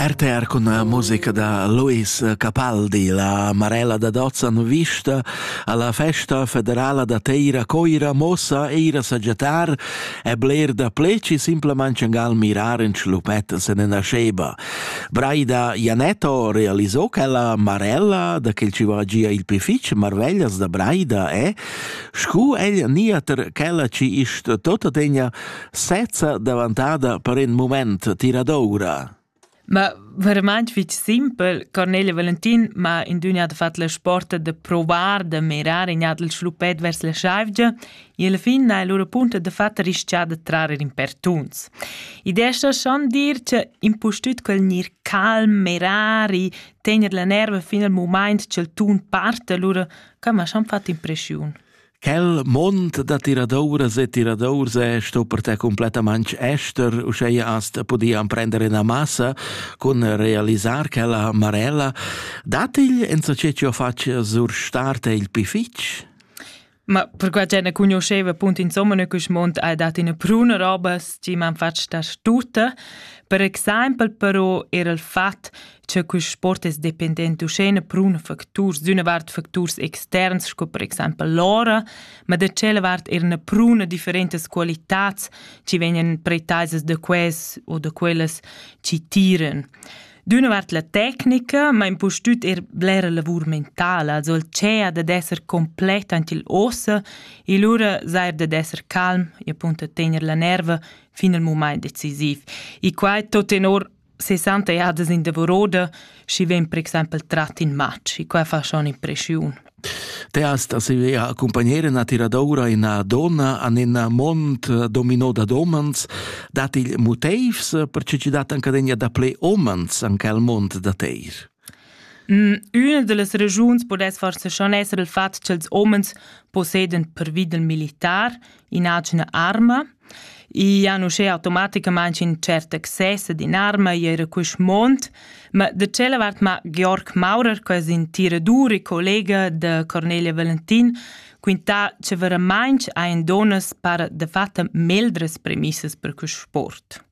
RTR con la musica da Luis Capaldi, la Marella da Dozzan vista alla festa federala da Teira Coira mossa eira saggiatar e bler da pleci simplemente gal mirar in schlupet se ne nasceba. Braida Janetto realizò che la Marella da che ci vagia il pific marveglias da Braida e scu ella niater chella ci ist tota tegna sezza davantada per in moment tiradoura. Ma verament fitg simpel, Cornelia Valentin m'ha in dünia de fat la sporta de provar de mirar in adel schlupet vers la schaivgia e alla fin ha lura punta de fat rischià de trarer in pertuns. Idea sta schon dir che impustüt quel gnir calm, mirar e tegner la nerva fin al moment ch'el tun parte lura, ca m'ha schon fat impressiun. Quel mond da tiradouras e tiradours è sto per te completamente ester, uscheia hast podia prendere una massa cun realisar quella marella. Datigl en so ce ci ho fac sur starte il pi fitch? Ma per quella gente conosceva appunto insomma che il mond ha dato una pruna roba che mi hanno fatto da stutta. Per esempio però era il fatto che quist sport es dependent uschena prun facturs d'üna vart facturs externs sco per exaimpel l'ora, ma da tschella vart eir üna pruna differentas qualitats chi vegnan pretaisas da quais o da quellas chi tiran. D'üna vart la tecnica, ma impustüt eir blera lavur mentala, also il cea dad esser complet ant il ossa e lura sair dad esser calm e appunto tener la nerva fin al mumaint decisiv. E quai tot tenor 60 jadas in davoroda, schi vegn per exempel trat in match, e quai fa schon impressiun. Teas da sevea accompagnere na tiradoura ina donna an ina mont domino da domans, dat il motivs per ce ci dat anca degna da ple omans an quel mont da teir? Üna da las ragiuns pudess forsa schon esser il fat cha'ls homens posseden pervi dal militar inagina arma. I han uschè automaticamaing ün tschert access ad in'arma i eira quist mond. Ma da tschella vart m'ha Georg Maurer, que es ün tiradur e collega da Cornelia Valentin, quintà cha veramaing hajan dunnas para dafatta meglras premissas per quist sport.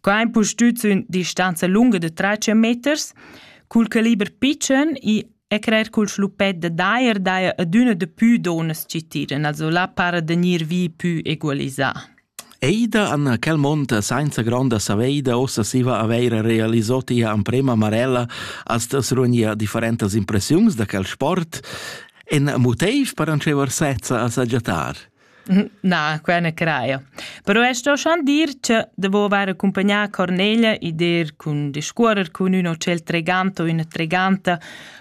Quai è impustüt sün distanza lunga da trais meters. Cul caliber pitschen i e crer cul schlupet da dajer daja adüna dapü donas chi tiran, also là para da gnir vi pü egualisà. Eida Anna Calmonta sainza gronda saveida ossa siva aveira realisò tia amprema marella als das runia differentas impressiuns da quel sport. En motiv per anceva sezza a sagiatar. Na, quai na crajo. Però es sto schon dir cha devo avair accumpagnà Cornelia e dir cun discuorrer cun ün hotel tregant o üna treganta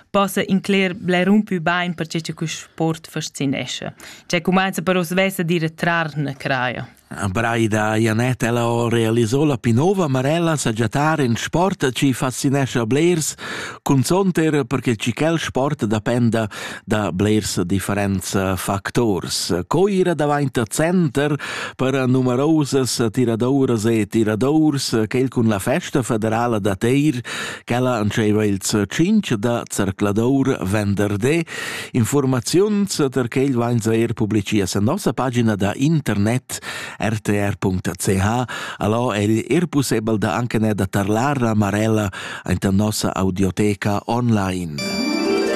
possa incler bler un pü bain perche cha quist sport fascinescha. Cioè cumanza però svess a dire trarne, crajo. A Braida Janett ella ho realisò la più nova Marella sagiatar in sport chi fascinescha blers, cunzont er perche chi quel sport dapenda da blers differents factors. Co ira davant center per numerosas tiradoras e tiradors quel cun la festa federala da Teir, quella antscheva ils cinc da zercladour venderdé. Informaziuns per quel vain er publicia sen nossa pagina da internet rtr.ch. Allò el er possibel da anche ne da tarlar a Marella anta nossa audioteca online.